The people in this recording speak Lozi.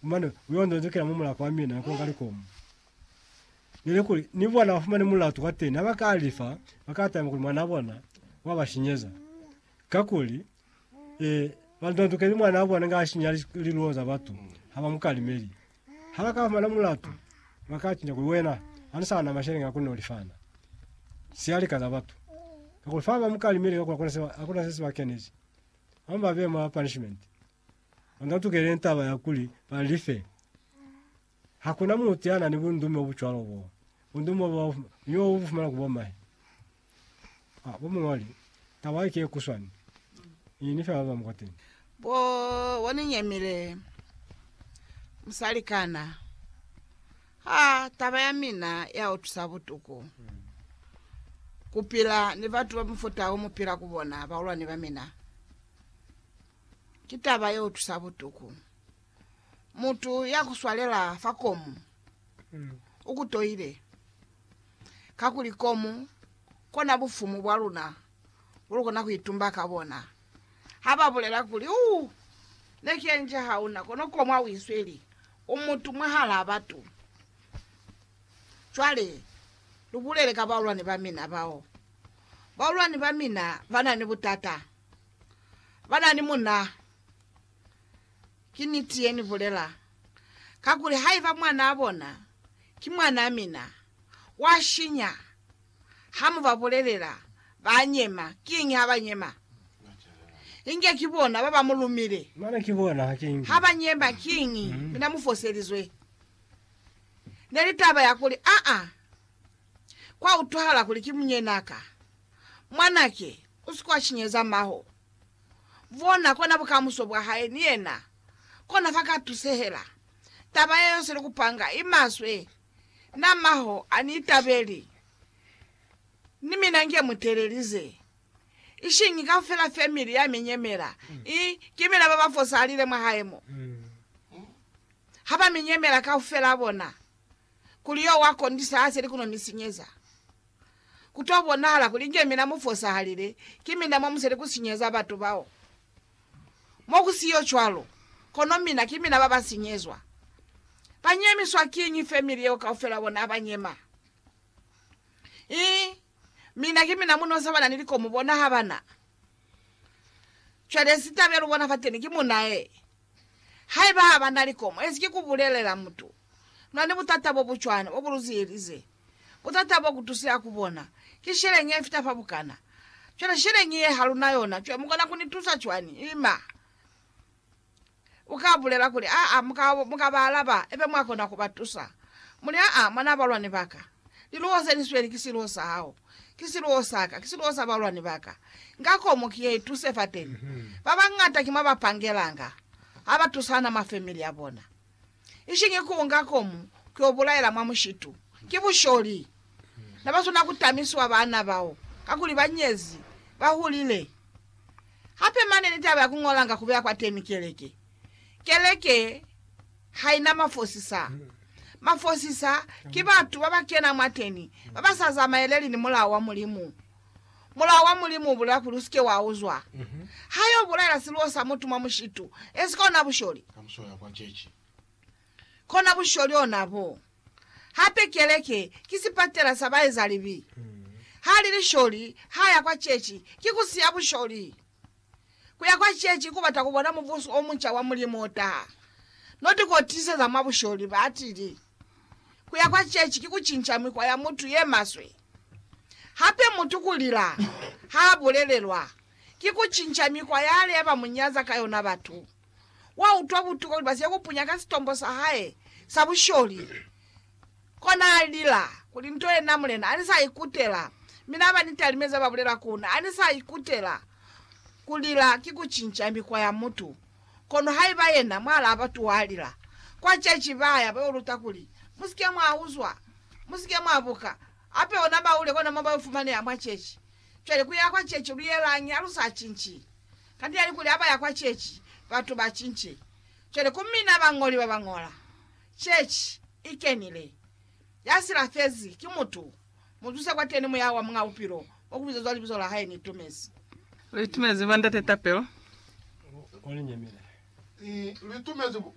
Mane uyo nzonzekela mu mulako wa mina konga likomu. Nili kuli ni bona bafumane mulatu kwa teni haba ka lifa bakatama kuli mwana bona wa bashinyeza. Kakuli e banzonzekeli mwana bona nga shinya liluo za batu haba mukalimeli. Haba ka fumana mulatu bakachinya kuli wena ani sana mashele nga kuni olifana. Sialika za batu. Kakuli fa ba mukalimeli kakuli akuna sesi bakenechi. Amba be ma punishment. Banga tukele intaba ya kuli ba li fe. Ha ku na mutu ya na ni bundume bo bu cwalo bo. Bundume bo ni bo bu fumana ku bomahe. Ha, bo muñoli, taba ye ki ye kuswani. Ni, ni fe ba bañwi kwateni. Bo, bo ni nyemile, musalikana. Ha, taba ya mina ya utwisa butuku, ku pila ni batu ba mufuta o mu pila ku bona, bahulwani ba mina. ki taba ye utusa butuku. Mutu ya kuswalela fa komu ukutoile, kakuli komu kona bufumu bwa luna bulukona kuitumba ka bona. Haba bulela kuli, Uu, ne ki enje hauna, kono komu ha uisweli, u mutu mwahalaa batu. Cwale, lubulele ka baulwani bamina bao. Baulwani bamina bana ni butata. Banani muna. Ki niti ye ni bulela. Kakuli haiba mwanaa bona ki mwanaa mina, wa shinya. Ha mu ba bulelela, ba nyema. Kiñi ha ba nyema? Inge ki bona ba ba mu lumile. Ha ba nyema, kiñi? Mina mu foselizwe. Ne li taba ya kuli, Aa, kwa utwahala kuli ki munyenaa ka. Mwanake, u si kwa cinyeza maho. Bona kona bukamuso bwa hae ni yena, kona fa ka tusehela. Taba ye yose ni kupanga i maswe. Na maho a ni itabeli, ni mina nge mu telelize. Ishiñi kaufela family ya mi nyemela, i, ki mina baba fosalile mwa hae mo. Ha ba mi nyemela kaufela bona, kuli yo wa kondisa a seli kuno mi sinyeza. Ku to bonahala kuli inge mina mu fosahalile, ki mina mwa musali ku sinyeza batu bao. Mo ku siyo cwalo, kono mina ki mina ba ba sinyezwa. Ba nyemiswa kiñi family yeo kaufela bona ba nyema? I mina ki mina munosa bana ni likomo bona ha ba na. Cwale sitabelo bona fateni ki munae. Haiba ha ba na likomo, ezi ki ku bulelela mutu. Luna ni butata bo bu cwana, bo bu lu ziyelize. Butata bo kutuse aku bona, ki sheleñi ye fita fa bukana. Cwale sheleñi ye haluna yona, cwale mukona kuni tusa cwani? Ima. Uka bulela kuli, Aa, muka, muka ba alaba, ebe mwa kona kuba tusa. Muli, Aa, mwanaa balwani baka, liluho se lisweli ki siluho sa hao, ki siluho saka, ki siluho sa balwani baka. Nga komo ki ye ituse fateni. Babañata ki mwa ba pangelanga, ha ba tusana mwa family ya bona. ishingi ku unga komu ku yo bulaela mwa mushitu. Ki busholi. Na ba swana ku tamiswa baana bao, kakuli ba nyezi, ba hulile. Hape mane ni taba ya ku ngolanga ku beya kwateni keleke. Keleke ha ina mafosisa. Mafosisa ki batu ba ba kena mwateni, ba ba sa zamaeleli ni mulao wa Mulimu. Mulao wa Mulimu ubulela kuli usike wauzwa. Ha yo bulaela siluwo sa mutu mwa mushitu, ezi kona busholi. Kona busholi ona bo. Hape keleke ki sipatela sa baezalibi. Ha li lisholi, ha ya kwa chechi, ki kusiya busholi. Kuya kwa ceci kubata kubona Mubuso omunca wa Mulimu otaha. Notikotiseza mwa busholi, batili. Kuya kwa ceci ki kucinca mikwa ya mutu yemaswe. Hape mutu kulila haabulelelwa, ki kucinca mikwa yale bamunyaza ka yona batu. Wautwa butuku kuli basike kupunya ka sitombo sahae sa busholi Kona alila kuli, Nto yena mulena ani sa ikutela, mi na ba ni talime za ba bulela ku na, ani sa ikutela. Kulila ki kucinca mikwa ya mutu. Kono haiba yena mwa laba tu alila, kwa ceci baya ba yo luta kuli, Musike mwa uzwa, musike mwa buka, hape ona ba ule kona mo ba yo fumaneha mwa ceci. Cwale ku ya kwa ceci lu yelañi ha lu sa cinci? Kanti yani kuli ha ba ya kwa ceci, batu ba cinci. Cwale ku mina bañoli ba ba ñola, Chechi i kenile, ya silafezi ki mutu, mu zuse kwateni Muya wa Muñ'a Bupilo, wa ku bizezwa Libizo la Hae. Ni itumezi. Lu itumezi, Bandate Tapelo.